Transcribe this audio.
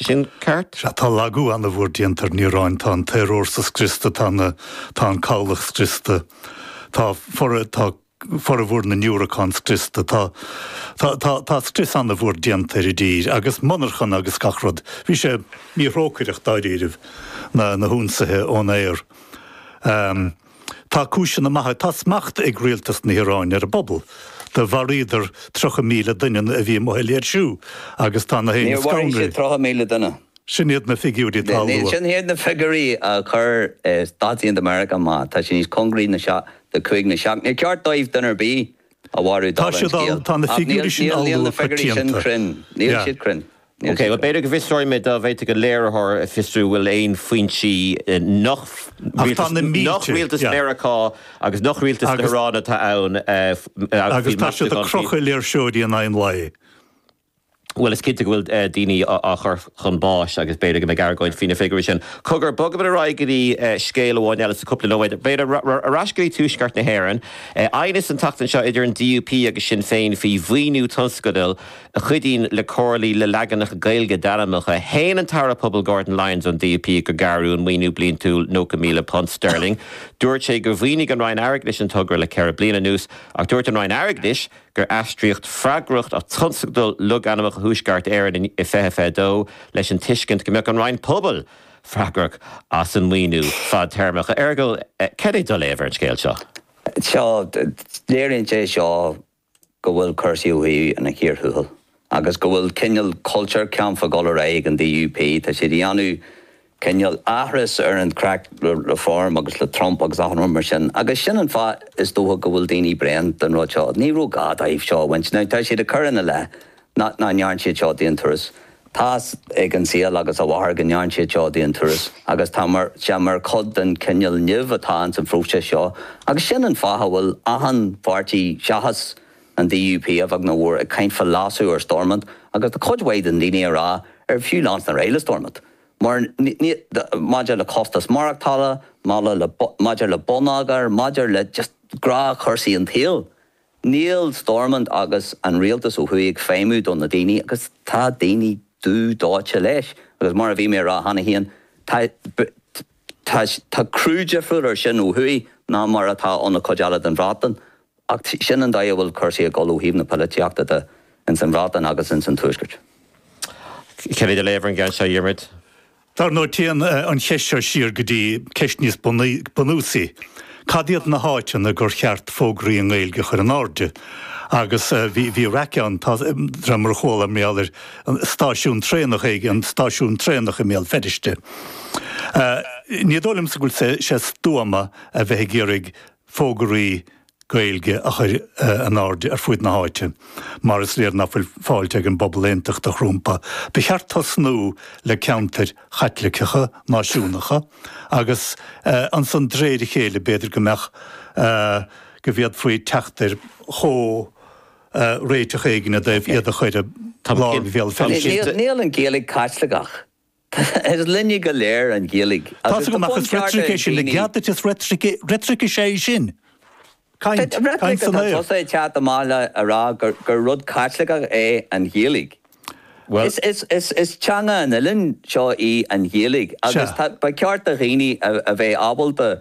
sin ceart. Sea, tá lagú an-mhór déanta ar an Iaráin, tá an t-aerfhórsa scriosta, tá na, tá an cabhlach scriosta, tá fora, tá formhór na ndiúracán scriosta, tá, tá, tá, tá scrios an-mhór déanta ar an dtír agus monarchana agus gach rud. Bhí sé míthrócaireach dáiríribh, na, na hionsaithe ón aer. Tá cúiseanna maithe. Tá smacht ag rialtas na hIaráine ar an bpobal. Do mharaíodar 30,000 duine a bhí amuigh ag léirsiú agus tá na daoine scanraithe. Níor mharaigh siad 30,000 duine. Sin iad na figiúirí atá á lua. Sin iad na figiúirí a chuir Stáit Aontaithe Mheiriceá amach. Tá siad níos cóngaraí do 5 nó 7. Níor cheart dóibh duine ar bith a mharú, dála an scéil. Tá na figiúirí sin á lua coitianta. Ach níl na figiúirí sin cruinn. Níl siad cruinn. Ok bhuel. B'fhéidir go bhfiosróidh mé dá bhféadfaidh an léiritheoir a fiosrú an bhfuil aon foinsí nach rialtas Mheiriceá agus nach rialtas na hIaráine atá ann agus tá siad ag crochadh léirseoirí in aghaidh an lae. Bhuel is cinnte go bhfuil daoine á chur chun báis agus b'fhéidir go mbeidh argóint faoi na figiúirí sin. Cogar, bogfaimid ar aghaidh go dtí scéal amháin eile sa chúpla nóiméad. B'fhéidir, ar ais go dtí Tuaisceart na hÉireann. Aighneas an tseachtain seo idir an DUP agus Sinn Féin faoi mhaoiniú tionscadail. a chuidíonn le comhairlí le leaganacha Gaeilge d'ainmneacha. Shéan an tAire Pobal Gordon Lyons ón DUP gur gearradh an maoiniú bliantúil £90,000 sterling. Dúirt sé gur mhaoinigh an Roinn Airgeadais an togra le ceithre bliana anuas ach dúirt an Roinn Airgeadais gur aistríodh freagracht as Tionscadal Logainmneacha Thuaisceart Éireann in 2022 leis an tuiscint go mbeadh an Roinn Pobal freagrach as an maoiniú fadtéarmach. A Fheargail, céard é do léamh ar an scéal seo? Sea, léiríonn sé seo go bhfuil cúrsaí ó thuaidh ina chíor thuathail agus go bhfuil cineál Kulturkampf ag dul ar aghaidh ag an DUP. Tá siad ag déanamh cineál aithris ar an chraic le Reform agus le Trump agus achan rud mar sin agus sin an fáth is dócha go bhfuil daoine bréan den rud seo. Ní raibh gá dóibh seo a bhaint. Now tá siad ag cur ina leith nach ndearna siad seo d'aon turas. Tá's ag an saol agus a mháthair go ndearna siad seo d'aon turas agus tá sé mar chuid den chineál nimh atá ins an phróiseas seo agus sin an fáth a bhfuil achan pháirtí seachas an DUP, a bheag nó a mhór, ag caint fá leasú ar Stormont agus tá cuid mhaith de na daoine ag rá ar fiú leanstan ar aghaidh le Stormont mar maidir le costas maireachtála, maidir le bonneagar, maidir le just gnáthchúrsaí an tsaoil. Níl Stormont agus an rialtas ó thuaidh ag feidhmiú do na daoine agus tá daoine dubh dóite leis. Agus mar a bhí mé a rá cheana féin, tá, tá, tá cruth difriúil air sin ó thuaidh ná mar atá ón chuid eile den Bhreatain. Ach sin an dóigh a bhfuil cúrsaí ag dul ó thaobh na polaitíochta de ins an Bhreatain agus ins an Tuaisceart. Cén é do léamh ar an gceann seo, Dhiarmaid? Dar ndóigh, téann an cheist seo siar go dtí ceist níos bunúsaí, cad iad na háiteanna gur cheart fógraí i nGaeilge a chur in airde? Agus bhí raic ann, de réir mar a chuala mé, ar stáisiún traenach éigin, an stáisiún traenach i mBéal Feirste. Ní dóigh liomsa go bhfuil sé stuama a bheith ag iarraidh fógraí Gaeilge a chur in airde ar fud na háite. Mar is léir nach bhfuil fáilte ag an bpobal aontachtach rompu, ba cheart tosnú le ceantair Chaitliceacha, náisiúnacha agus ansan d'réir a chéile b'fhéidir go mbeadh, go bhféadfaí teacht ar chomhréiteach éigin i dtaobh iad a chur i lár Bhéal Feirste. Níl an Ghaeilge Caitliceach Is linne go léir an Ghaeilge. Tá's agam ach is reitric é sin, i gcead duit is reitric is ea é sin. Caint san aer. Reitric atá tusa ag teacht amach le a rá gur rud Caitliceach é an Ghaeilge. Bhuel. Is teanga an oileáin seo í an Ghaeilge agus ba cheart do dhaoine a bheith ábalta